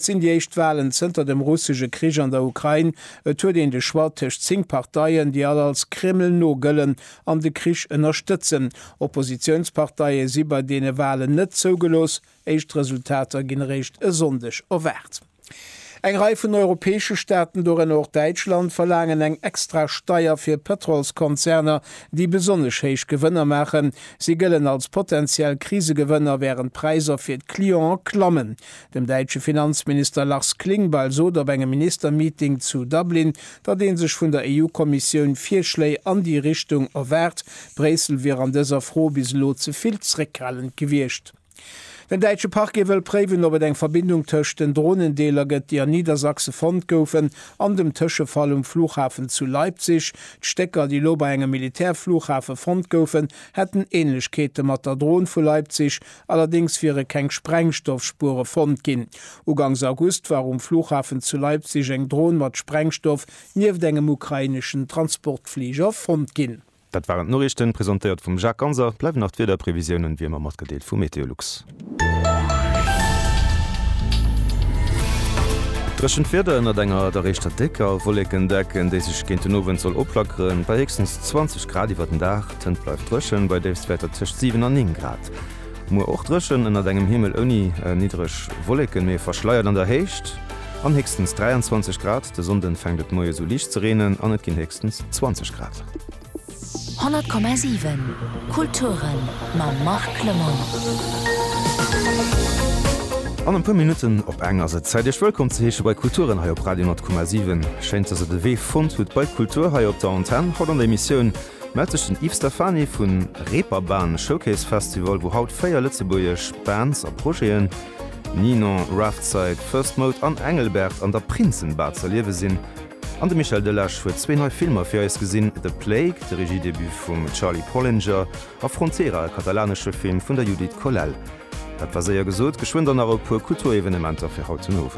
Et sinn déi éischt Walen zënter dem russesche Krich an der Ukrain. Et huet een de Choix tëscht zéng Parteien, déi all als Kreml no gëllen an de Krich ënnerstëtzen. Oppositiounsparteie si bei deene Walen net zougelooss. Éischt Resultater ginn eréischt e Sonndeg erwaart. Eng Rei vun europäesche Staaten, dorënner och Däitschland, verlaangen eng extra Steier fir Pëtrolskonzerner, déi besonnesch héich Gewënner maachen. Si gëllen als potenziell Krisegewënner, wärend d'Präisser fir d'Clienten klammen. Den däitsche Finanzminister Lars Klingbeil sot op engem Ministermeeting zu Dublin, datt ee sech vun der EU-Kommissioun Virschléi an déi Richtung erwaart. Bréissel wier an dëser Fro bis elo ze vill zréckhalend gewiescht. Den däitsche Parquet wëll préiwen, ob et eng Verbindung tëscht den Dronendeeler gëtt, déi an Niedersachse fonnt goufen, an dem Tëschefall um Flughafen zu Leipzig. D'Stécker, déi elo bei engem Militärflughafe fonnt goufen, hätten Änlechkeete mat der Dron vu Leipzig, Allerdéngs wiere keng Sprengstoffspuere fonnt ginn. Ugangs August war um Flughafen zu Leipzig eng Dron mat Sprengstoff nieft engem ukraineschen Transportfliger fonnt ginn. Dat waren d'Noriichten, presentéiert vum Jacques Ganser. Et bleiwen nach d'Wiederprevisiounen, wéi ëmmer matgedeelt, vu Meteolux. Dréchent Wieder ënnert enger deréischter décker Wolléckendecken, déi sech géint den Owend soll opflackeren, bei héchstens 20 Grad iwwer den Dag. D'Hënt bleift dréchen, bei Déifstwäerter tëscht 7 an 9 Grad. Muer och dréchen ënnert engem Himmel ouni niddreg Wolleken, mee verschleiert an der Héicht an héchstens 23 Grad. De Sonnde fänkt et moies u liicht ze reenen an et ginn héchstens 20 Grad. 100,7 Kulturen mam Marc Clement. An e puer Minutten op eng ass et Zäit iech wëllkomm ze heesche bei Kulturen hei op Radio 10,7. Schéin dass der de Wee fonnt hutt bei Kultur hei op der Antenn. Haut an der Emissioun. Mellt sech den Yves Stephany vu Reeperbahn Showcase Festival, wou haut 4 lëtzebuergesch Bands a Projeten, Ninon, Roughtside, First Mode an Engelbert, an der Prinzenbar z'erliewe sinn. An de Michel Delage huet zwee nei Filmer fir eis gesinn, The Plague, de Regiedebut vum Charlie Pollinger, a Frontera, e katalanesche Film vun der Judith Colell. Dat war séier gesot, geschwënn dann nach e puer Kulturevenementer fir haut den Owend.